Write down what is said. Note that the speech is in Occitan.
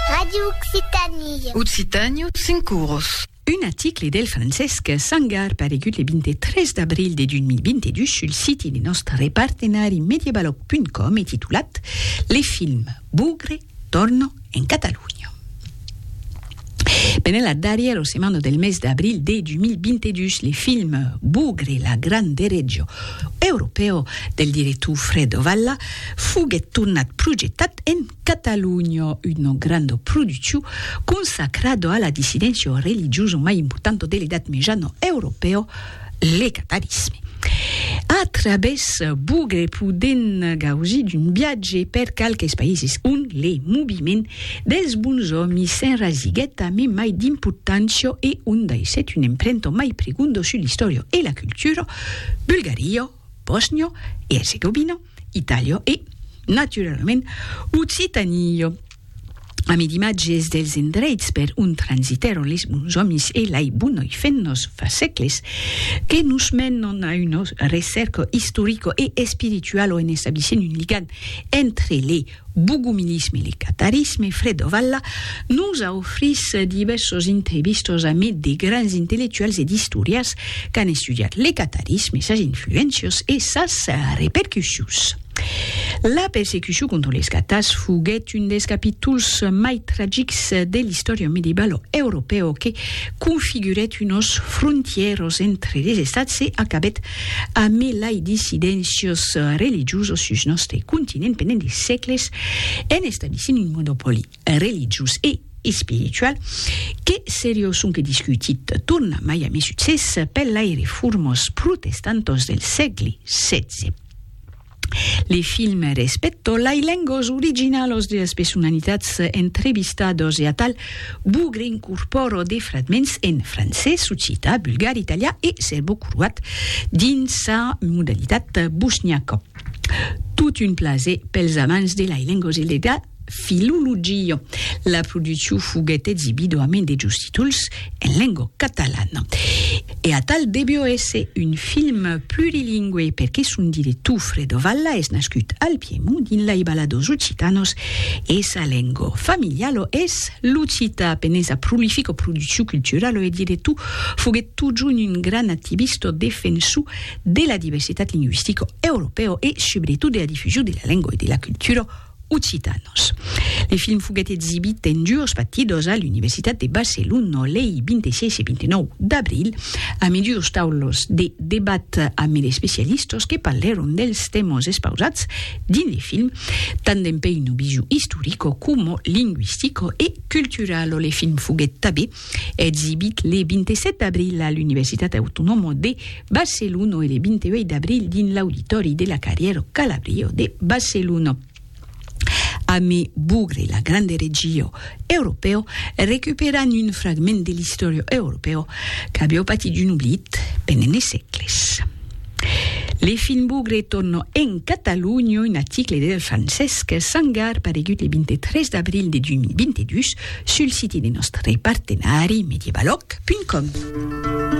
Radio Occitanie. Occitània, cinc oros. Un aticle del Francesc Sangar paregut le 23 d'abril de 2022 sul siti de nòstre repartenari Mediabalòg.com e titulat Le film Bugre torna en Catalonha. Pendent la darrièra setmana del mes d'abril de 2022, le film Bugre, la gran deretjo europèu del director Fredo Valla, foguèt tornat projetat en Catalonha, una granda produccion consacrada a la dissidéncia religiosa mai importanta de l'Edat Mejana europèa, le catalisme. A través bugre podem gausir d'un viatge per qualques païses on le moviment dels bons òmis s'enrasiguèt a me mai d'importància e on daissèt un emprento mai pregondo sul l'istòria e la cultura, Bulgaria, Bòsnio e Erzegovina, Itàlia e, naturalament, Occitània. Ami d'imatges dels endreits per ont transitèron les bons òmis e lei bonoi fennos fa sècles, que nos menon a un recerco istorico e espiritualo en establissent un ligam entre les Bogumilisme le catarisme, Fredo Valla nos a ofrís divèrsos entrevistos amid de grands intellectuals e d'istorians qu'an estudiat le catarisme, sas influéncios e sas repercussions. La persecucion contra les catars foguèt un dels capítols mai tragics de l'istòria medievalo europèo que configurèt unos frontièros entre les estats e acabèt A mai lai dissidéncios religiosos sus nòste continent pendent de sègles en establissent un monopòli religiós e espiritual que seriós sonque discutit torna mai a mai succès per lai reformos protestantòs del sègle xvi. Le film respècto lai lengos originalos de las personalitats entrevistados e atal bugre incorpòro de fragments en francés, occità, bulgar, italià e serbocroat dins sa modalitat bosniaca. Tot un plaser pels amants de lai lengos e de la. Filologia. La produccion foguèt exibida a main de jos títols en lenga catalana. E atal devió èsser un film plurilingüe perque son director Fredo Valla es nascut al Piemont dins lei Baladors Occitanos e sa lenga familiala es l'occità. Pendent sa prolifica produccion culturala e director foguèt totjorn un grand activista defensor de la diversitat lingüistica europèa e subretot de la difusion de la lenga e de la cultura occitanos. Le film foguèt exibit en dues batidos a l'Universitat de Barcelona lei 26 e 29 d'abril, amid dues taulas de debat amid especialistas que parlèron dels tèmas espausats dins le film, tant dempuèi una vision istorica coma linguistica e culturala. Le film foguèt tanben Exibit le 27 d'abril a l'Universitat Autonòma de Barcelona e le 28 d'abril dins l'auditori de la Carrièro Calabrio de Barcelona. Amé Bugre la grande regió europèo recuperan un fragment de l'istòria europèo qu'avió patit un oblit pendent de sègles. Le fin bugre torno en Catalunya, un article de Francesc Sangar paregut le 23 d'abril de 2022 sul siti de nòstre partenari medievaloc.com.